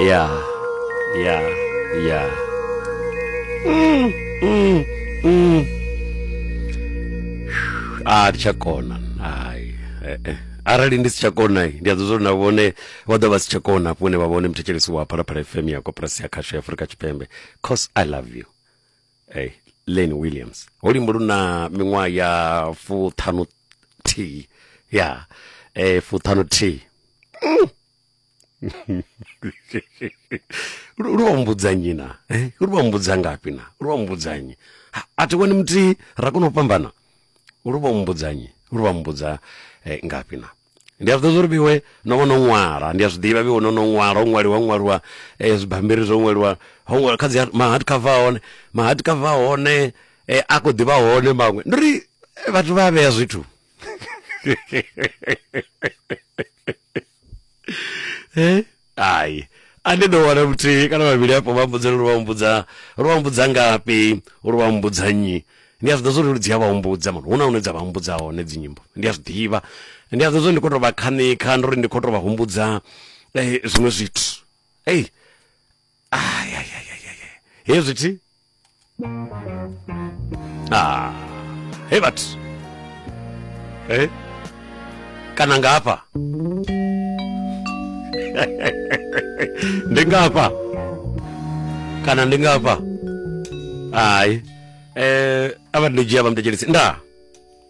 ya ya ya a ndi tsha kona hai eh, eh. arali ndi si tsha kona ndi a ḓozwa uri na vhone vha ḓo vha si tsha kona hafho hune vha vhone muthetsheliso wa phalaphala fm ya koporasi ya khasho ya afurika tshipembe cause i love you hey, lane williams ho limbo lu na miṅwaha ya fuṱhanu thihi ya eh, fuṱhanu thihi lu vha mbudzanyi na eh, lu vha mbudza ngafhi na lu vha mbudzanyi a thi wani muthihi ra kona u fhambana lu vha mbudzanyi lu vha mbudza eh, ngafhi na ndi a zwi ḓivha uri vhiwe no vha no ṅwala ndi a zwi ḓivha vhiwe no no ṅwala ho ṅwaliwa ṅwaliwa eh, zwibambiri zwo ṅwaliwa ho ṅwaliwa kha dzi mahard cover hone mahard cover hone eh, a khou ḓivha hone maṅwe ndi uri eh, vhathu vha vhea zwithu ai a ndi ḓo wana muthihi kana vhavhili afho vha mbudze uri vha mbudza uri vha mbudza ngafhi uri vha mbudza nnyi ndi a zwi ḓivha zwa uri dzi a vha humbudza mara hu na hune dza vha humbudza hone dzi nyimbo ndi a zwi ḓivha ndi a zwi ḓivha zwa uri ndi khou tou vha khanikha ndi uri ndi khou tou vha humbudza eh, zwiṅwe zwithu ei ai ai ai ai, ai. hezwi thi ah. hey but eh? kana ngafha ndi ngafha kana ndi ngafha hayi eh aba ndidzhia vha mtejelisi nda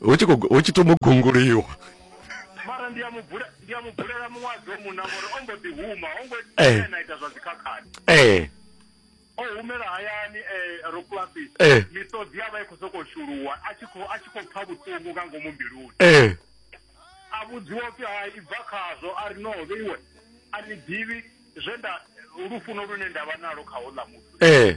hu tshi khou- hu tshi thoma u gunguliwa mara ndi a mu bula- ndi a mu bulela muṅwadzi o munna ngori o mbo ḓi huma o ngo Eh. ena ita zwa dzikhakhani ee o humela hayani eh, ro kulasi Eh. miṱodzi ya vha i khou sokou shuluwa a tshi khou- a tshi khou pfa vhuṱungu nga ngomu mbiluni ee a vhudziwa upfi ha i bva khazwo a ri no vheiwe a ni ḓivhi zwe nda lufuno lune nda vha nalo kha houḽa muthu ee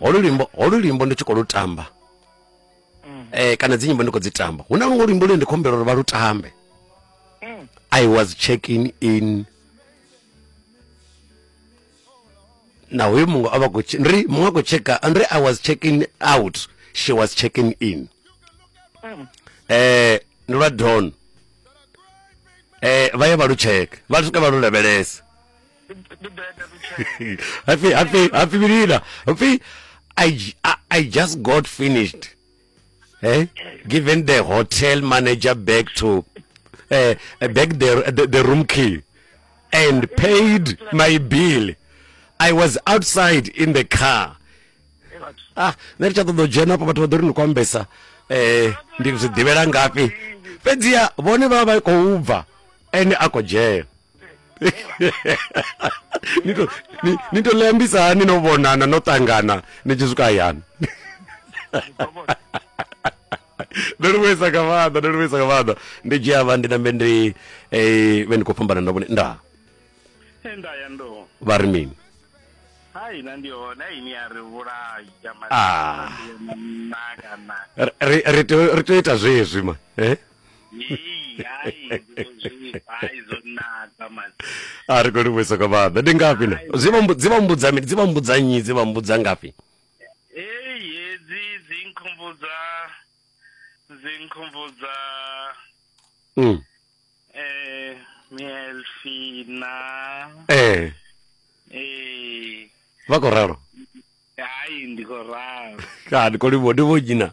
holu luimbo holu luimbo ndi tshi khou lu tamba mm. eh, kana dzi nyimbo ndi khou dzi tamba hu na luṅwe luimbo lune ndi khou humbela uri vha lu tambe mm. i was checking in na hoyo muṅwe a vha khou ri muṅwe a khou checka ri i was checking out she was checking in mm. eh ndi lwa don eh vha ye vha lu tsheke vha swika vha lu lavhelesa happy happy happy milina happy I, I, I just got finished eh given the hotel manager back to uh, back the, the the room key and paid my bill i was outside in the car ah nṋe ri tsha ṱoḓa u dzhena afho vhathu vha ḓo ri ni khou ambesa um eh, ndi zwi ḓivhela ngafhi fhedziha vhone vha vha vha khou bva ene a khou dzhena ni to ni, ni to lembisa hani no vhonana no tangana ni tshi swika hayani ndo livhuisa nga maanḓa ndo livhuisa nga maanḓa ndi dzhia vha ndi nambe ndi eh, vhe ndi khou fhambana na vhone nda nda ya ndo vha ri mini hai na ndi hone hai ni a ri vhulayi ya Ah. maaka na Ri- ri ri tea ri tea u ita zwezwi ma eh? a ri khou livhuisa nga maanḓa ndi ngafhi na dzi vha mbu- dzi vha mbudza mini dzi vha mbudza nnyi dzi vha mbudza ngafhi Hey, hedzi dzi nkhumbudza dzi nkhumbudza Mm. eh Mielfina ee eh vha khou ralo hayi ndiko raro ka ndi khou livhuwa ndi vho dzina